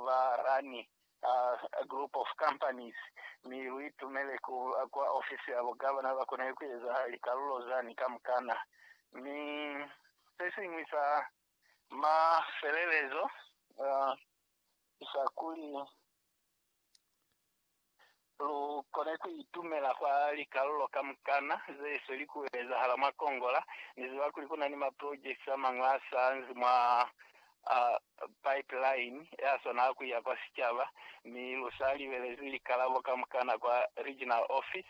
ba rani a group of companies mi lu itumele ku kwa ofisi ya bugavana ba kone ku eza likalulo zani kamukana. Mi se siñwi sa mafelelezo ki sa kuli, Lu kona ku itumela kwa likalulo kamukana ze swe li ku ezahala mwa Kongola. Ni ziba kuli ku na ni maprojekiti a mañwi a sa nzi mwa pipeline ya swana a ku iya kwa sicaba, mi lu sa libelezi likalabo kamukana kwa regional ofisi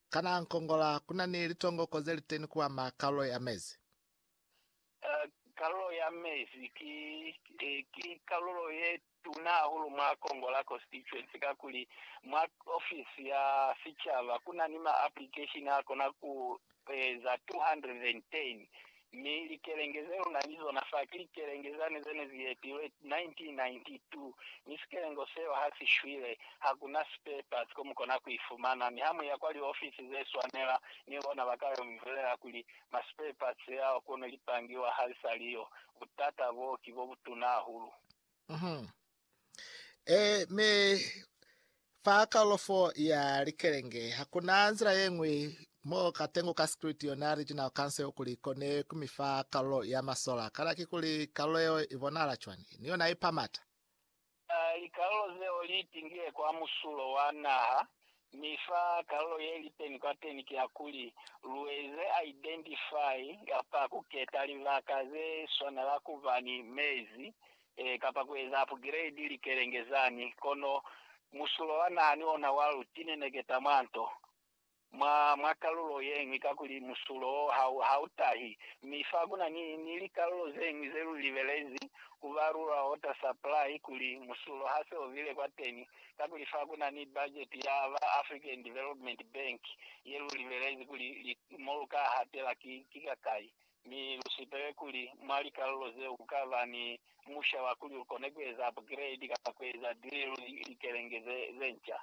Kana nkongola kuna ni litongoko zeliteni kuama kalulo ya mezi? Kalulo ya mezi ki kalulo yetuna hahulu mwa kongola, constituency, kakuli mwa ofisi ya sicaba kuna ni ma application akona kueza 210 Mi likelenge zeluna ni zona fa ki likelenge zani zene zi etilwe 1992, mi sikelengo seo ha si shwile. Hakuna spare parts ko mukona ku ifumana, mi ha muya kwa liofisi ze swanela, ni bona ba ka yo mi bulela kuli, Ma spare parts ao kono lipangiwa ha li sa li yo. Butata boo ki bo butuna hahulu. Eh, mi fa kalofo ya likelenge hakuna nzila ye nngwe mo ka tengo ka security yona regional council kuli kone kumi fa kalo ya masola kana ki kuli kalo yeo i bonahala cwani ni yona i pamata Ah, likalolo zeo li tingile kwa musulo wa naha, Mi fa kalulo ye li teni kwateni ki ya kuli, lu eze identify kapa ku keta libaka ze swanela ku ba ni mezi, e, kapa ku eza upgrade likelenge zani. Kono musulo wa naha ni ona wa lu tineneketa mwa nto, mwa, mwa kalulo yeñwi, kakuli musulo wo ha u, ha u tahi. Mi fa ku na ni, ni likalulo zeñwi ze lu libelezi ku ba lula water supply, kuli musulo ha se o bile kwateni, kakuli fa ku na ni bajeti ya ba African Development Bank ye lu libelezi kuli li, mo lu ka hatela ki, ki kakai, mi lu sipele kuli mwa likalulo zeo ku ka ba ni musha wa kuli lu kone ku eza upgrade kapa ku eza drill likelenge ze, ze nca.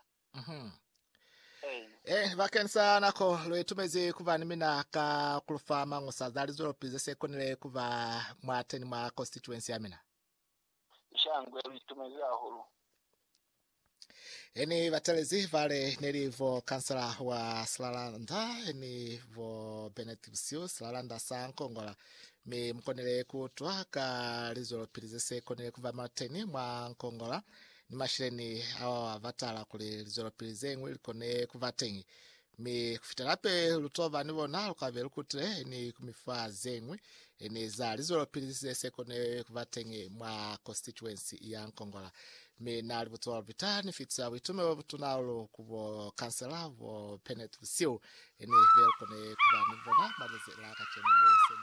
Ee. Eh, bakeni sa nako, lu itumezi ku ba ni mina ka ku lu fa mañusa za lizwelopizi ze si konile ku ba mwateni mwa constituency ya mina. Shangwe lu itumezi hahulu. Eni batalezi bale neli vo kansela wa Silalanda eni vo Bennett Busiu Silalanda sa Nkongola mi mukonile kuutwa ka lizwelopili zese konile kuba mwateni mwa Nkongola ni mashileni awa batala kuli lizwelopili zeñwi likone kuba teñi Mi kufitela pe lu tova ni bona, lu kabe lu kutile ni ku mifa zeñwi ni za lizwelopili ze se kone kuba teñi mwa konsitituensi ya Nkongola. Mi na li butuwa lubita, ni fitisa buitumelo botuna hahulu ku bo kansela bo Bennett busihu ni be lu kone kuba ni bona mwa lezi la kacenu. Mi se ni